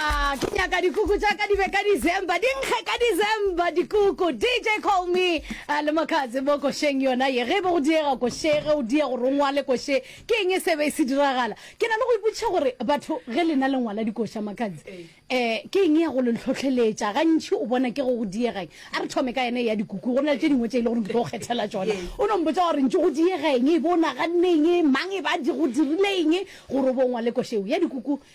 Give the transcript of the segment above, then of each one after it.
Ah, ke nyaka dikuku tša ka di be ka December, di nkge ka December dikuku. DJ Call Me ah, le Makatse mo košeng yona ye. Ge e be go diega koše, ge o diega gore o ngwale koše, ke eng e se be e se diragala? Ke na le go ipotšiša gore batho ge lena le ngwala dikoša Makatse, eh, ke eng ya go le hlohleletša? Gantši o bona ke go go diega eng? A re thome ka yena ya dikuku, go na le tše dingwe tše e le gore ke tlo go kgethela tšona. O no mpotsa gore ntše go diega eng, e bo o naganne eng, mang e ba di go dirile eng gore o bo o ngwale koše eo ya dikuku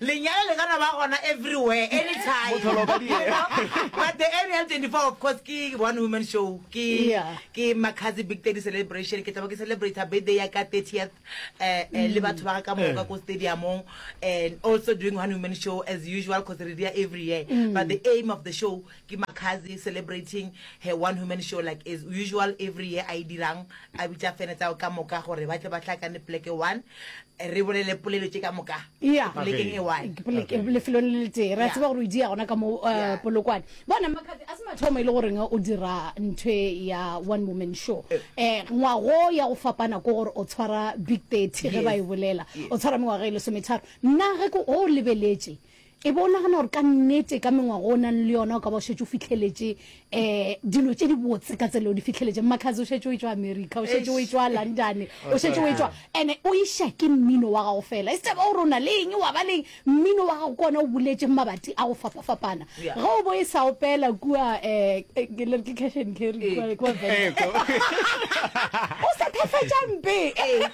Lenyalo le gana ba gona everywhere, anytime. Mohlolo ka diye. You know? But the Area 24, of course, ke one woman show. Ke, Yeah. ke Makhazi Big Daddy Celebration. Ke tla ba ke celebrate birthday ya ka 30th, eh, eh, le batho ba ga ka moka ko stadiumong. And also doing one woman show as usual, cause re dia every year. But the aim of the show Ke Makhadzi celebrating her one human show like as usual every year a e dirang, a bitša fene tsa ka moka gore ba tle ba hlakane poleke one re bolele polelo tše ka moka Yeah. polekeng e one. Ke pole- ke lefelong le le tee re a Yeah. tseba gore o di ya gona ka mo uh, Yeah. polokwane bona makhathi a se mathomo e le goreng o dira ntho e ya one woman show Eh. um ngwago ya go fapana ko gore o tshwara big thirty ge Yes. ba e bolela Yes. o tshwara mengwaga e lesometharo nna ge ko o lebeletše E be o nagana gore ka nnete ka mengwago o nang le yona o ka ba o šetše o fitlheletše um dilo tše di botse ka tsela o di fitlheletše mmakhazi o šetše o e tšwa america o šetše o e tšwa london o šetše o e tšwa ande o iša ke mmino wa gago fela e se taba gore o na le eng wa ba leng mmino wa gago ke ona o boletšeng mabati a go fapafapana ge o bo e sa opela kua um cash and carry kwa- kwa Venda. Eh, ko- o sa thafetša mpe eh.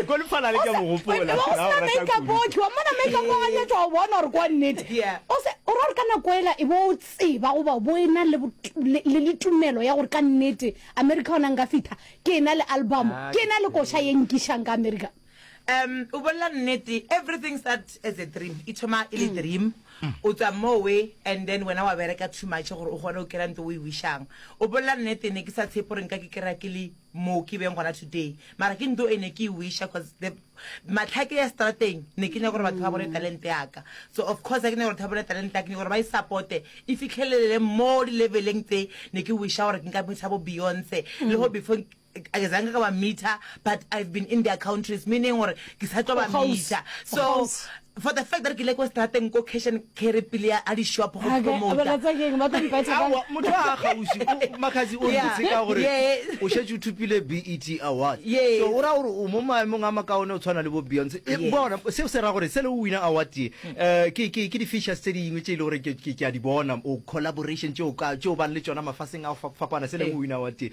ko lefalale ke a mo gopola Wena, o Na o sena rata makeup kudu. otlhe wa mmona makeup wa ganyetsa wa bona gore kwa nnete Yeah. O se- o ra gore ka nako ela e bo o tseba goba bo e na le bot- le le- le tumelo ya gore ka nnete america ona nka fitha ke e na le album Ah, ke e na le koša ye nkišang ka america Um o bolela nnete everything start as a dream e thoma e le mm. dream mm. o tswa mowe and then wena wa bereka too much gore o kgone o kry-a nto o e wishang o bolela nnete ne ke sa tshepo gore nka ke kry-a ke le moo ke beng gona today mara ke nto e ne ke e wisha cause the matlhake ya strateng ne ke nyaka gore batho ba bone mm. talente yaka so of course a ke nyaka gore ba bone talente yaka ke nyaka gore ba e supporte e fitlhelelele mo di-leveleng tse ne ke wisha gore ke nka bontsha bo beyonce le go before ke zange ka ba meter but i've been in their countries meaning gore ke sa tlo ba meter so for the fact that ke ile ko strateng ko cash and carry pele ya a di-shop go motho a gausi makgazi o ntse ka gore o šetse o thupile bet award so o ra gore o mo maemong a makaone o tshwana le bo beyonce e, bona seo se ra gore se le o wina award ye um ke di-features tse dingwe tse e le gore ke a di bona o collaboration tse o bang le tsona mafaseng a fapana se le o wina award ye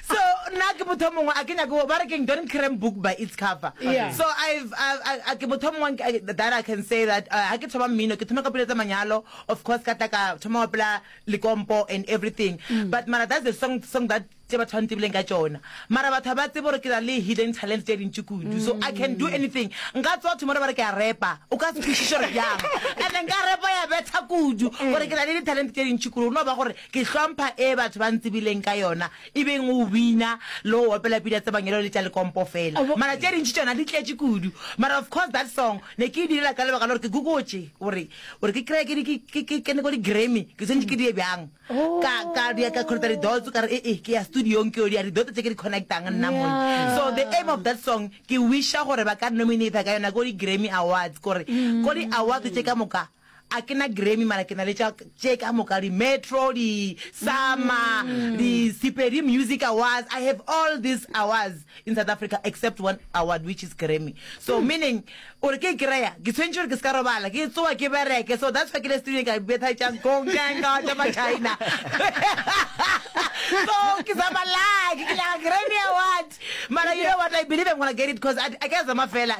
So nna ke motho mongwe a ke nyake go ba re keng don't cram book by its cover. Yeah. So I've a a ke motho mongwe a ke- that I can say that uh, ha ke thoma mmino ke thoma ka pelo tsa manyalo of course ka tla ka thoma wa pela likompo and everything. But mara that's the song song that tse batho ba ntebileng ka tsona. Mara batho ha ba tsebe gore ke na le hidden talents tse dintši kudu. So I can do anything. Nka tsoa tomorrow ba re ke a repa. O ka se kwešiše gore bjang. And then ka repa ya betha kudu gore ke na le di-talent tse dintši kudu. Go no ba gore Ke hlompha e batho ba ntsebileng ka yona e beng go bina le go opela pina tsa mangelo le tša lekompo fela. Mara tše dintši tšona di tletše kudu. Mara of course that song ne ke e direla ka lebaka la gore ke gogotše gore gore ke kry-e ke ke ke kene ko di-grammy ke tshwanetše ke di ye bjang. Ka ka di ya ka connecta di-dots ka re e-e ke ya studio-ng ke yo di ya di-dots tše ke di connect-ang nna monna. So the aim of that song ke wish-a gore ba ka nominate-a ka yona ko di-grammy awards gore ko di-awards tše ka moka A ke na Grammy mara ke na le tša tše ka moka di Metro di Sama di Sepedi Music Awards I have all these awards in South Africa except one award which is Grammy so meaning o re ke e kry-a ke tshwentše gore ke se ka robala ke tsoa ke bereke so that's why ke le studio ka betha tša konkenka tša ma China so ke zama luck ke nyaka Grammy Award mara you know what I believe I'm gonna get it because I, I ka zama fela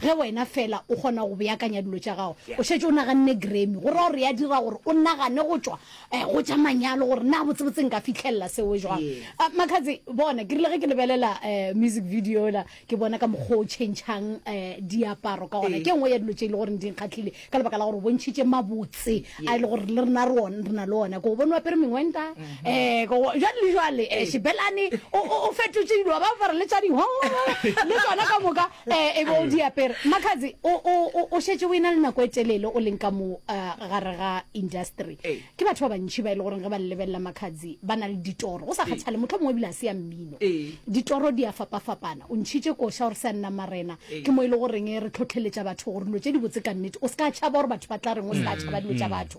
Ge wena feela o kgona go beakanya dilo tša gago, o šetše o naganne Grammy, go ra gore ya dira gore o nagane go tšwa eh, go tša manyalo gore na botsebotse nka fitlhelela seo jwang. Ah, Makhatsi, bona, ke rile ge ke lebelela eh, music video yola, ke bona ka mokgwa o tšhentšhang eh, diaparo ka gona. Ke nngwe ya dilo tše e le goreng di nkgahlile ka lebaka la gore o bontšhitše mabotse a e le gore le rena re on- re na le ona. Ko o bone o apere mengwenta, eh, ko o- jwale le jwale eh, Shebelane o- o o fetotše dilo, ba apara le tša dihongo le tsona ka moka. e e be o di apere makhatsi o o o o shetse o ena le nako e telele o leng ka mo uh, gare ga industry Ee. ke batho ba bantšhi ba e le goreng ge ba le lebelela makhatsi ba na le ditoro go sa kgathale motlho mongwe ebile a se ya mmino Ee. ditoro di a fapafapana o ntšhitše koša gore se a nna marena Ee. ke mo e le goreng re tlhotlheletša batho gore dilo tše di botse ka nnete o se ka tšhaba gore batho ba tla reng o se ka tšhaba dilo tša batho